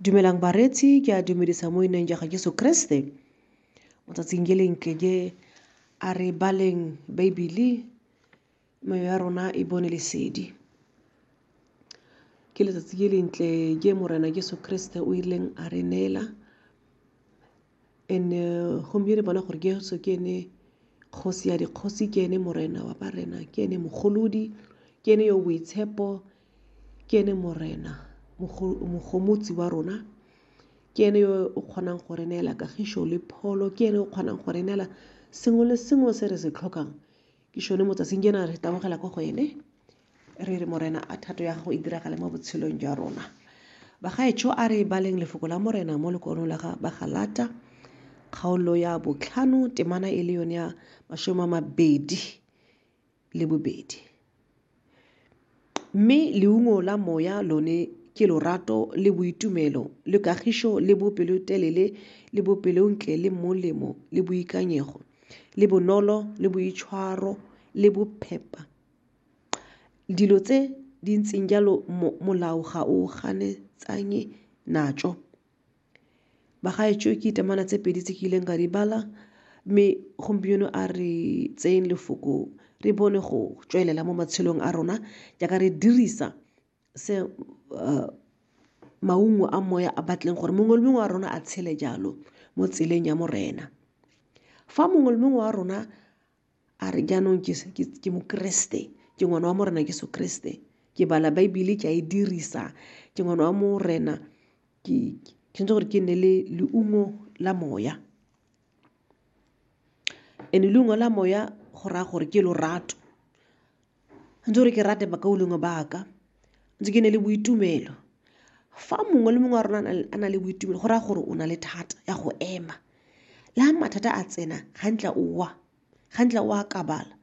Dumelang bareetsi, ke a dumedisa mo ineng ja ga Jesu Kriste. Mo tsatsing ke leng ke je a re baleng Baebele meyo ya rona e bone lesedi. Ke letsatsi ke lentle je Morena Jesu Kriste o ileng a re neela And-e gomme re bona gore Jesu ke ene kgosi ya dikgosi, ke ene morena wa barena, ke ene mogolodi, ke ene yo o boitshepo, ke ene morena mogomotsi wa rona, ke ene yo o kgonang go re neela kagišo le pholo, ke ene o kgonang go re neela sengwe le sengwe se re se tlhokang. ke šone mo tsatsing jena re tabogela ko go ene re re morena a thato ya gago e diragale mo botshelong jwa rona bagaetsho a re baleng lefoko la morena mo lekonong la ga bagalata kgaolo ya botlhano temana e le yone ya masome a mabedi le bobedi Mme leungo la moya lone ke lorato le boitumelo le kagišo le bopelotelele le bopelontle le molemo le boikanyego le bonolo le boitshwaro le bophepa dilo tse di ntseng jalo molao ga o ganetsanye natso Bagaetsho ke ditamana tse pedi tse ke ileng ka di bala mme gompieno a re tseyeng lefoko re bone go tswelela mo matshelong a rona jaaka re dirisa se maungo a moya a batleng gore mongwe le mongwe wa rona a tshele jalo mo tseleng ya Morena. Fa mongwe le mongwe wa rona a re jaanong ke mokeresete ke ngwana wa morena ke sekeresete ke bala baebile ke a e dirisa ke ngwana wa morena ke tshwanetse gore ke nne le leungo la moya and-e leungo la moya go raya gore ke lorato ntse gore ke rate bakaulengwe ba ka, ntse ke nne le boitumelo. Fa mongwe le mongwe wa rona a na le boitumelo go raya gore o na le thata ya go ema. Le ha mathata a tsena ga nkitla o wa, ga nkitla o akabala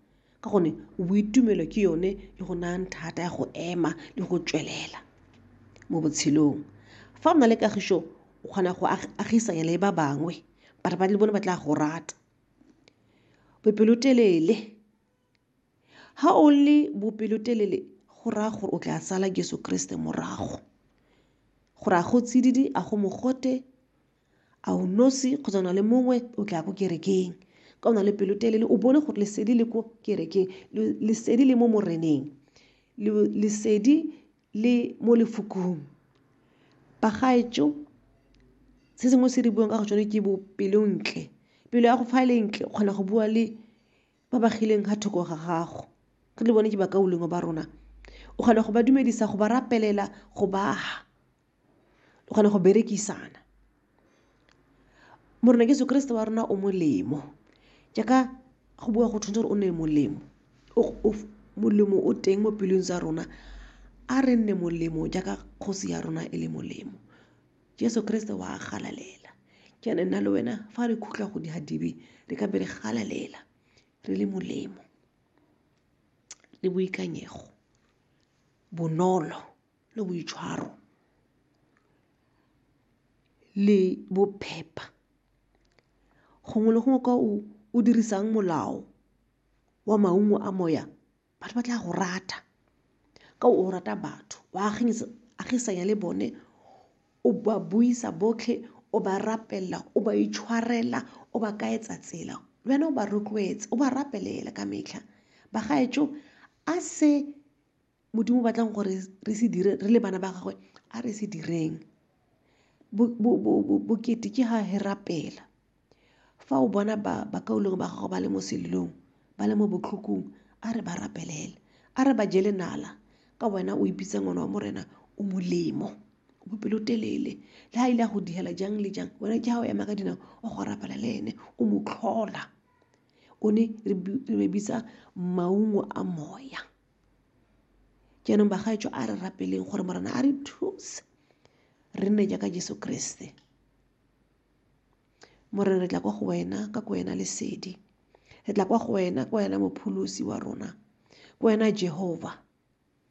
ka gonne boitumelo ke yone e go nayang thata ya go ema le go tswelela mo botshelong. Fa o na le kagišo o kgona go agisanya le ba bangwe, batho le bone ba tla go rata. Bopelotelele. Ha o le bopelotelele go raya gore o tla sala Jesu Kriste morago. Gore a go tsididi, a go mogote, a o nosi kgotsa o na le mongwe o tla ko kerekeng. Ka o na le pelotelele o bone gore lesedi le ko kerekeng, lesedi le mo moreneng, lesedi le mo lefokong. Bagaetsho, se sengwe se re buang ka go tsone ke bo pelontle. Pelo ya go fa e le ntle o kgona go bua le ba ba kgileng ga thoko ga gago re le bone ke bakaulengwe ba rona o kgona go ba dumedisa go ba rapelela go baga o kgona go berekisana morena jesu kriste wa rona o molemo jaaka go bua go tshwanetse gore o ne molemo molemo o teng mo pelong tsa rona a re nne molemo jaaka kgosi ya rona e le molemo Jeso Keresete wa galalela. Ke ene nna le wena fa re khutla go dihadibe re ka be re galalela re le molemo le boikanyego, bonolo le boitshwaro le bophepa. Gongwe le gongwe kwa o dirisang molao wa maungo a moya batho ba tla go rata ka o rata batho wa agisanya le bone o ba buisa botlhe o ba rapelela o ba itshwarela o ba kaetsa tsela le wena o ba rotloetse o ba rapelela ka metlha bagaetsho a se modimo o batlang gore re se dire re le bana ba gagwe a re se direng bokete ke ga he rapela. Fa o bona ba ba kaulengwe ba gago ba le mo selilong, ba le mo botlhokong, a re ba rapelele. A re ba jele nala ka wena o ipitsa ngwana wa Morena o molemo, o bopelotelele. Le ha ile a go diela jang le jang, wena ke ha o ema ka dinao o go rapela le ene, o mo tlhola. O ne re re bitsa maungo a moya. Jaanong bagaetsho a re rapeleng gore Morena a re thuse re nne jaaka Jeso Keresete. Morena re tla kwa go wena ka ko wena lesedi re tla kwa go wena kwa wena mopholosi wa rona kwa wena Jehovah